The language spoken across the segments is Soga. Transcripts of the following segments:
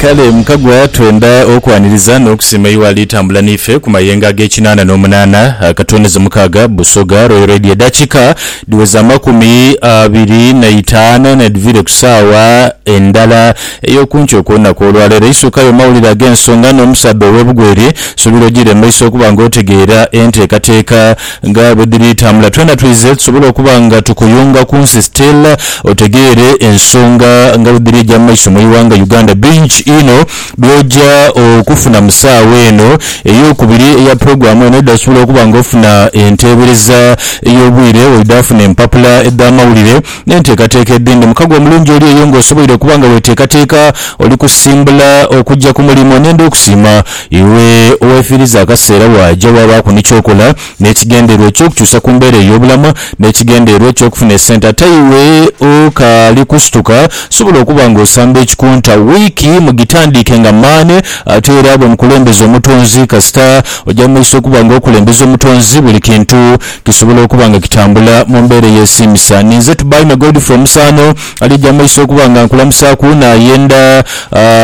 Kale Mukagwa twendha okwaniriza n'okusiima y'owaali atambula n'ife ku mayengo ag'ekinaana n'omunaana, akatwoneza mukaaga, Busoga Royal Radio edaakiika dhiweze amakumi abiri na itaanu n'edhiviire ku saawa endala ey'okunkyo okw'olunaku olwaleero. Eisookayo mawulire ag'ensonga n'omusaadha ow'ebugweeri. Nsuubira ojiire mu maiso okuba nga otegeera enteekateeka. Nga bwe dhiri tambula twena twize tusobole okuba nga tukuyunga ku nsi still otegeere ensonga nga bwe dhiri eja mu maiso mu ighanga Uganda bingi inho byoja okufuna mu saawa eno eyokubiri eya program eno edha sobola okuba nga ofuna enteebereza eyobwire oidha funa empapula edha mawulire N'enteekateeka edhindi. Mukago omulungi oli eyo ng'osoboire okuba nga weeteekateeka oli kusimbula okuja ku mulimo. N'enda okusiima iwe oweefiiriza akaseera waaja waabaaku ni ky'okola n'ekigendererwa eky'okukyusa ku mbeera ey'obulamu n'ekigendererwa eky'okufuna esente. Ate iwe okaali kusituka, sobola okuba ng'osamba ekikunta. Wiiki mugitandiike nga maani. Ate era bwe mukulembeza Omutonzi, kasita oja mu maiso okuba ng'okulembeza Omutonzi, buli kintu Kisobola okuba nga kitambula mu mbeera eyesiimisa. Ninze Tubaime Godfrey Omusaano alija mumaiso okuba nga nkulamusaaku nayenda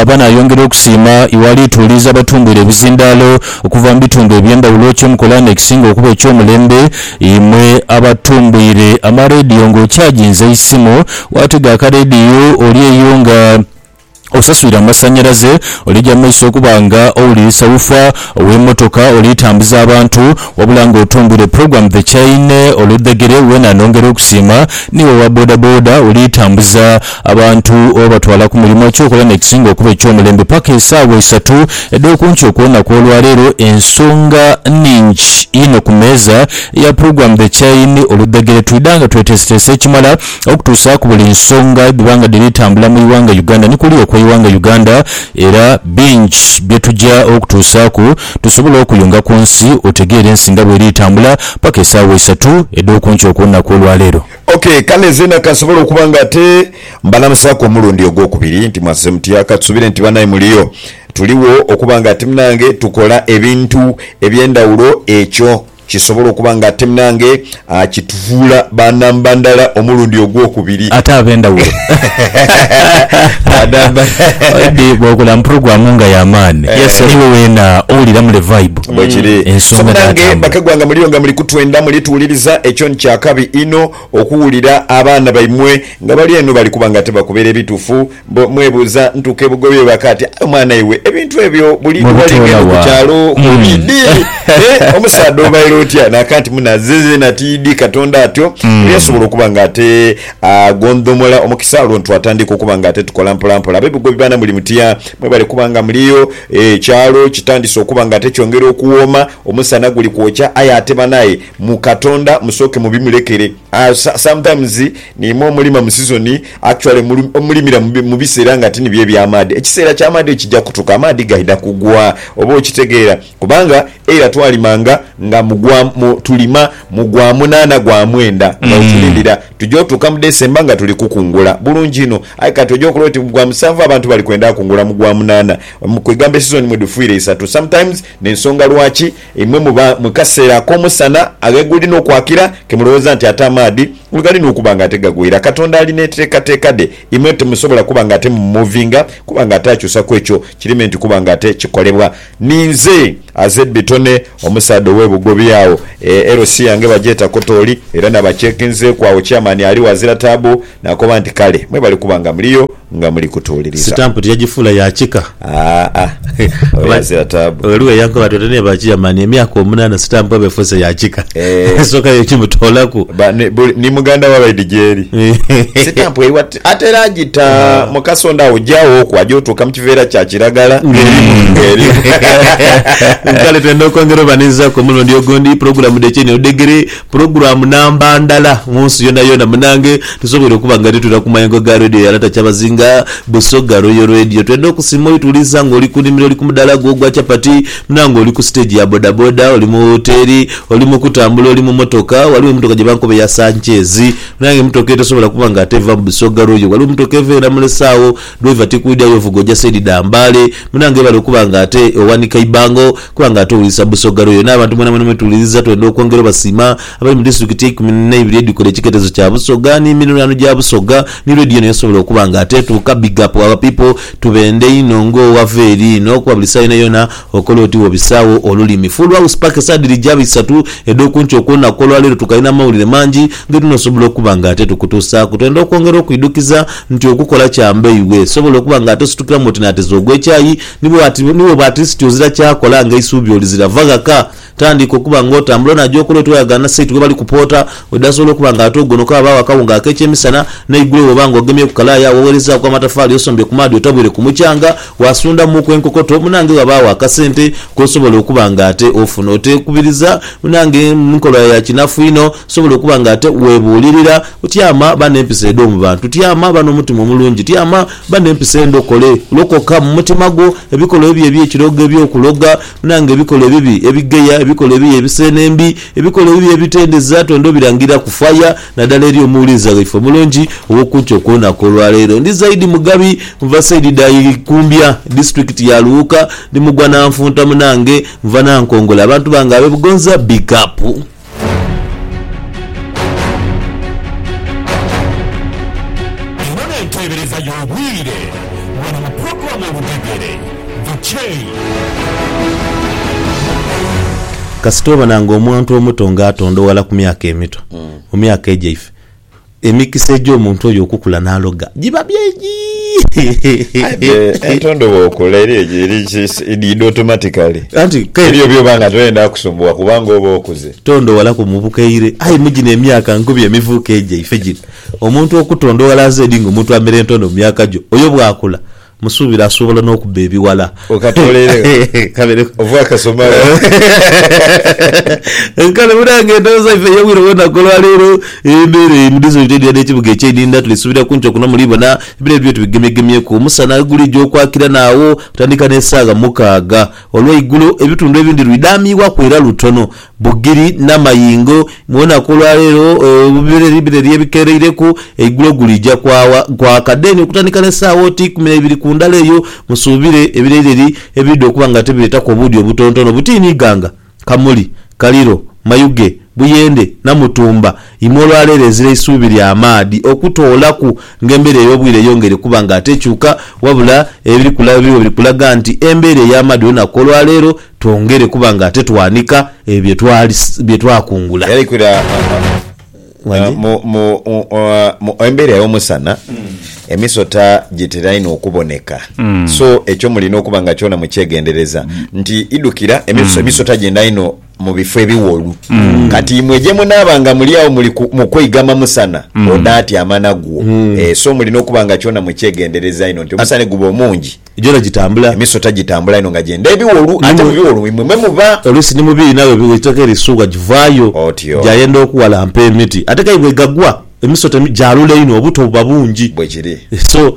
aba nayongera okusiima iwe ali tuwuliiza abatumbwire ebizindaalo okuva mu bitundu ebyendhawulo kyemukola nekisinga okuba ekyomulembe imwe abatumbwire amarediyo nga okyaginze eisimu watega akarediyo oli eyo nga osaswire amasannyalaze, oliija mu maiso okuba nga owulirisa wuufa ow'emotoka oli tambuza abantu, wabula nga otumbwire program the chain oludhegere weena nongera okusiima, niiwe owa boda boda oli tambuza abantu obatwala ku mulimo kyokola nekisinga okuba eky'omulembe paka esaawa isatu edh'okunkyo kw'olunaku olwaleero ensonga nningi inho ku meeza eya program the chain oludhegere twidha nga tweteeseteese ekimala okutuusaaku buli nsonga edhiba nga dhiri tambula mu ighanga Uganda ni kuli okw'eighanga Uganda era bingi bye tuja okutuusaaku tusobole okuyunga ku nsi otegeere ensi nga bweri tambula paka esaawa isatu edh'okunkyo okw'olunaku olwa leero. Ok kale zeena kansobole okuba nga ate mbalamusaaku omulundi ogw'okubiri nti mwazze mutya? Katusubire nti banae muliyo tuligho okuba nga ati munange tukola ebintu eby'endhawulo ekyo. Kisobola okuba nga ate munange akitufuula ba namba ndala omulundi ogwokubiri. Ate abendhawulo. Ba namba. Maybe bwokula mu program nga ya maani Yes. niiwe weena owulira mule vibe. Bwekiri. So Ensonga munange dhatambula. bakagwanga muliyo nga muli kutwenda muli tuwuliriza ekyo ni kyakabi inho okuwulira abaana baimwe nga bali eno bali kuba nga tebakubeera ebitufu. Bbo mwebuuza ntuuke bugoye waka ati aye omwana iwe ebintu ebyo buli Mwe lwewali bitoola ngenda ku wa? kyalo ku Mm. idi e omusaadha obaire otya naka nti munaze zena tiidi katonda atyo era yasobola okuba nga ate agondhomola omukisa olwo ntwatandika okuba nga ate tukola mpola mpola. Abe Bugobi baana muli mutya? Mwebale kuba nga muliyo e kyalo kitandise okuba nga ate kyongera okuwooma omusana guli kwokya aye ate banaye mu katonda musooke mubimulekere. Sometimes niima omulima mu season actually omulimira mubisera nga tinibyo ebyamaadhi ekisera kyamaadhi kija kutuka amaadhi gaidha kugwa oba okitegeera kubanga eira twalima nga nga tulima mugwa munaana gwa mwenda nga wetulindira tuja otuuka mu December nga tuli kukungula bulungi inho aye kati oja okola oti mugwa musanvu abantu bali kwenda kungula mugwa munaana kwegamba esizoni mwedhufwire isatu sometimes nensonga lwaki Imwe muba mu kaseera ak'omusana agheguli n'okwakira, ke mulowooza nti ate amaadhi ghegali n'okuba nga ate gagwira. Katonda ali n'enteekateeka dhe, imwe timusobola kuba nga ate mumuuvinga, kuba nga ate akyusa ku ekyo kiri me nti kuba nga ate kikolebwa. Ninze aze Bitone, omusaadha ow'e Bugobi agho. LC yange bagyeta Kotooli, era nabakyekinzeeku agho Chairman aligho azira taabu, naakoba nti, Kale, mwebale kuba nga muliyo. nga muli kutuuliriza. Sitampu tiyagifuula ya kika. Aa, oyo azira taabu. Ghaligho eyankoba ati, oti naye ba Chairman, emyaka omunaana sitampu eba efuuse ya kika. Eh. Esooka yo kimutoolaku. Ba, ni, buli, ni muganda wa Raidi gyeri. Sitampu eyo ati, ate era agita mu kasonda awo gyawoku aja otuuka mu kiveera kya kiragala. Kale twendha okwongera obanhizaaku omulundi ogundi, pulogulamu dh'ekyo eno edhegere. Pulogulaamu namba ndala mu nsi yoonayoona. Munange, tusoboire okuba nga titwira ku mayengo ga Radio ya Lata Kyabazinga, Busoga Royal Radio. Twendha okusiima oituliza nga oli ku nimiro, oli ku mudaala gwo ogwa chapati, munange oli ku siteegi ya bodaboda, oli mu woteeri, oli mu kutambula, oli mu motoka. Ghaligho emotoka gye bankoba eya Sanchez. Munange emotoka eyo tosobola kuba nga ate eva mu Busoga Royal. Ghaligho emotoka eva e Namulese agho. Driver tikwidha yo vuga oja side dha mbale. Munange webale okuba nga ate owanika ibango kuba nga ate owulisa busoga lwoyo nabantu mwena mwena mwetuwuliliza twenda okwongera obasiima abali mu district eikumi neibiri edhikola ekiketezo kya busoga ni mirirwano gya busoga ni radio eno yasobola okuba nga ate etuuka big up our people tubende inho nga owava eri ino kuba buli saa yona yona Okola oti bw'obisaagho olulimi. Full House paka esaa dhiri gya bisatu edh'okunkyo okw'olunaku olwaleero tukalina mawulire mangi ge tunoosobola okuba nga ate tukutuusaaku. Twenda okwongera okwidhukiza nti okukola kya mbe iwe sobola okuba nga ate ositukiramu oti n'ateeza ogw'ekyayi ni bw'oba ati siti ozira kyakola ng'eisuubi olizira. Va ghaka. Tandika okuba nga otambula onaaja okola oti wayagaana na site ghebali kupoota, wedasobola okuba nga ate ogonoka ghabagho akawunga ak'ekyemisana, n'eigulo bw'oba nga ogemye ku kalaaya agho waweerezaaku amatafaali osombye ku maadhi otabwire ku mukyanga, waasundhamuuku enkokoto, munange ghabagho akasente k'osobola okuba nga ate ofuna. Oteekubiriza munange nkola ya kinafu inho, osobola okuba nga ate weebuulirira, tyama ba n'empisa edh'omu bantu, tyama ba n'omutima omulungi, tyama ba n'empisa endhokole, lokoka mu mutima gwo ebikolwa ebyo eby'ekirogo eby'okuloga, Nanga ebikola ebibi ebigheya, ebikola ebibi ebiseene embi, ebikola ebibi ebitendeza, twendha obirangira ku faya, nadala eri omuwuliza waife omulungi ow'okunkyo kwonaku olwa leero. Ndi Zaidi Mugabi, nva saidi dha Ikumbya, disiturikiti ya Luwuka, ndi mugwa na nfunta munange, nva Nankongola, abantu bange abe Bugonza big up. Eno n'enteebereza y'obwire wano mu pulogulaamu Oludhegere, The Chain. Kasita obona nga omuntu omuto nga atondoghala ku myaka emito, mu myaka egyaife, Emikisa egy'omuntu oyo okukula n'aloga giba mingi. Aye entondo bw'okula eriyo edhiidha otomatikale. Anti kale. Eriyo by'oba nga toyenda kusumbuwa kubanga oba okuze. Tondowalaku mu bukaire. Aye mu gino emyaka nkubi emivuuka egyaife gino, omuntu okutondowala azeedi ng'omuntu amera entondo mu myaka gyo, oyo bw'akula Musuubire asobola n'okubba ebighala. Okatoleere gho ova akasoma gho. Kale munaange endhooza ife ey'obwire bwona ku olwaleero, embeera eri mu disiturikiti edhira n'ekibuga eky'e Idinda tuli suubira ku nkyo kuno muli bona ebire byo tubigemyegemyeku. Omusana gulija okwakira naagho okutandika n'esaagha mukaaga olw'eigulo. Ebitundu ebindi lwidhaamiibwaku era lutono Bugiri n'amayingo, mwona ku olwa leero bireri bireri ebikeereireku, eigulo guliija kwagha kwaka. Deni okutandika n'esaawa oti ikumi na ibiri ku ndala eyo, musuubire ebireireri ebiidha okuba nga tibireetaku obuudhi obutontono buti ni Iganga, Kamuli, Kaliro, Mayuge, Buyende, Namutumba. Imwe olwa leero ezira eisuubi lya maadhi okutoolaku ng'embeera ey'obwire eyongeire kuba nga ate ekyuka, wabula ebiri kulaga biri kulaga nti embeera ey'amaadhi olunaku olwa leero twongere kuba nga ate twanika ebyo bye twakungula. Yalekera mu embeera ey'omusana emisota gitera inho okuboneka, so ekyo mulina okuba nga kyona mukyegendereza nti idhukira emisota gyenda inho mu bifo ebiwolu. Kati imwe gye munaaba nga muli agho muli mu kweigama musana onaatyama nagwo, so mulina okuba nga kyona mukyegendereza inho nti omusana guba omungi. Gyona gitambula. Emisota gitambula inho nga gyenda ebiwolu, ate mu biwolu imwe mwe muba. Oluusi ni mu biina bwe bw'eitoke erisuubwa givaayo, Otyo. gyayenda okuwalampa emiti. Ate k'aye bw'egagwa, emisota gyalula inho, obuto buba bungi. Bwe kiri. So.